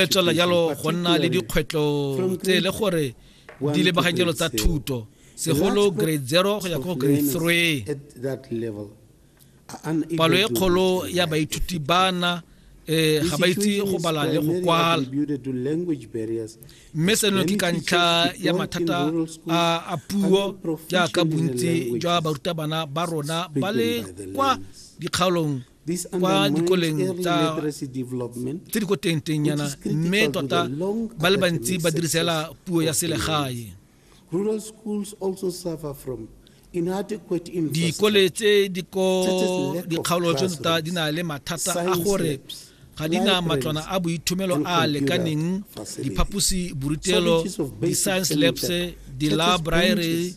e tswelela jalo go nna le dikgwetlho tse e le gore di lebagakelo tsa thuto segolo grade zero go ya ko grade three palo e kgolo ya baithuti bana eh ga ba itse go bala le go kwala mme seno ke ka ntlha ya mathata a puo jaaka bontsi jwa barutabana ba rona ba le kwa dikgaolong kwa dikoleng tse di ko tengtengyana mme tota ba le bantsi ba dirisela puo ya selegae dikole tse di ko dikgaolo tse tota di na le mathata a gore ga di na matlwana a boithomelo a a lekaneng diphaposi borutelo di-science labs di-library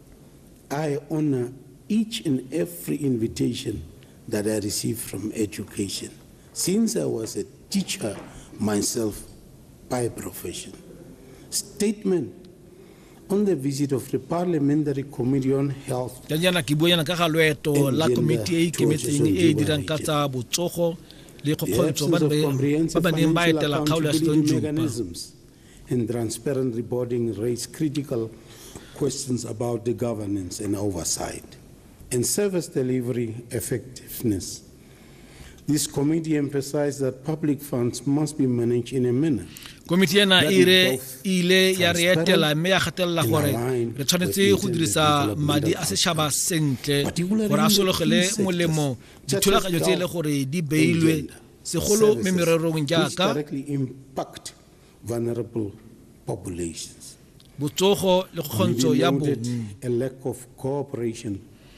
I honor each and every invitation that I receive from education since I was a teacher myself by profession. Statement on the visit of the Parliamentary Committee on Health. ka jaana ke buanyana ka ga loeto la komiti e e ikemetseng e e dirang ka tsa botsogo le kgokgontso ba ba neng ba etela kgaolo ya setlong jopa And transparent reporting raises critical questions about the governance and oversight and service delivery effectiveness. This committee emphasized that public funds must be managed in a manner komiti ena e e ile ya re etela mme ya gatelela gore re tshwanetse go dirisa madi a setšhaba sentle gore a sologele molemo dithulaganyo tse e le gore di beilwe segolo me mererong jaaka vulnerable populations. botsogo le kgontsho ya bongwe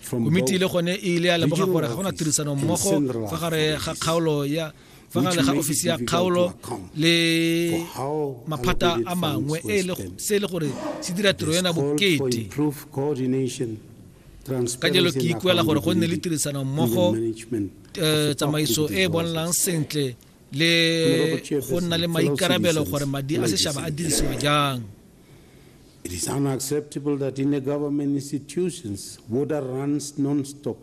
komiti le gone e ile ya lemoga gore ga gona tirisano mmogo fa gare ga kgaolo ya fa gare ga ofisi ya kgaolo le maphata a mangwe e se e le gore se dira tiro ena bokete ka jalo ke ikuela gore go nne le tirisano mmogo eh, tsamaiso e e bonalang sentle le go nna le maikarabelo gore madi a setšhaba a dirisiwa jang It is unacceptable that in a government institutions, water runs non-stop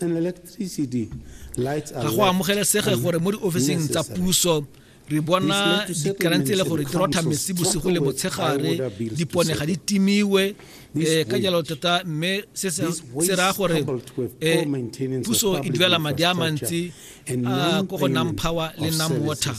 and electricity lights are ga go amogelesege gore mo diofising tsa puso re bona dikarang tse e le gore di rotha metsi bosigo le motshegare dipone ga di timiwe um ka jalo tota mme se raya gore um puso e duela madi a mantsi uh, ko go nam power le nam water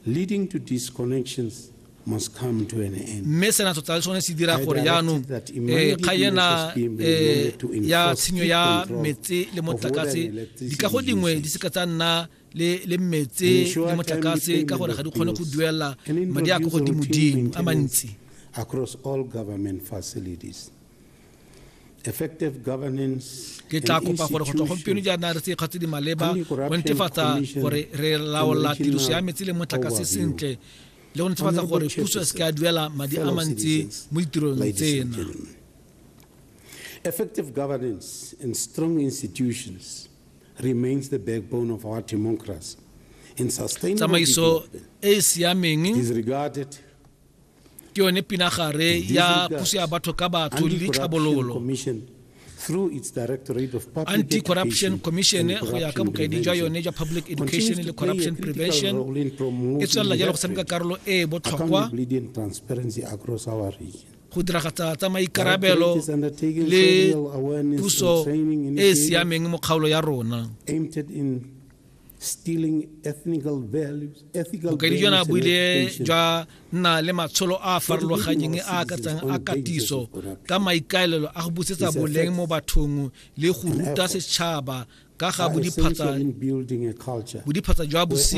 leading to disconnections must come to an end mme sena tota le sone se dira gore jaanong eh, kga ena eh, ya tshenyo ya metse le motlakase dikago dingwe di seka tsa nna le metse le motlakase ka gore ga di kgone go duela madi a ko godimodimo a mantsi across all government facilities effective governance ke tla kopa gore go tswa gompieno jaana re tse kgatse di maleba go netefatsa gore re laola tiriso ya metsi le motlakase sentle le go netefatsa gore puso e se ka duela madi a mantsi mo ditirong tsena effective governance and strong institutions remains the backbone of our democracy in sustainable tsamaiso e e siameng is regarded ke yone pinagare ya puso ya batho ka batho le ditlhabololo anti-corruption commission go ya ka bokaedi jwa yone jwa public education le corruption prevention e tswelela jalo go tshameka karolo e e botlhokwa go diragatsa tsa maikarabelo le puso e e siameng mo kgaolo ya rona bokaedi jona bo ile jwa nna le matsholo a a farologanyeng a akatsang a katiso ka maikaelelo a go busetsa boleng mo bathong le go ruta setšhaba ka ga bodiphatsa jwa bosenyi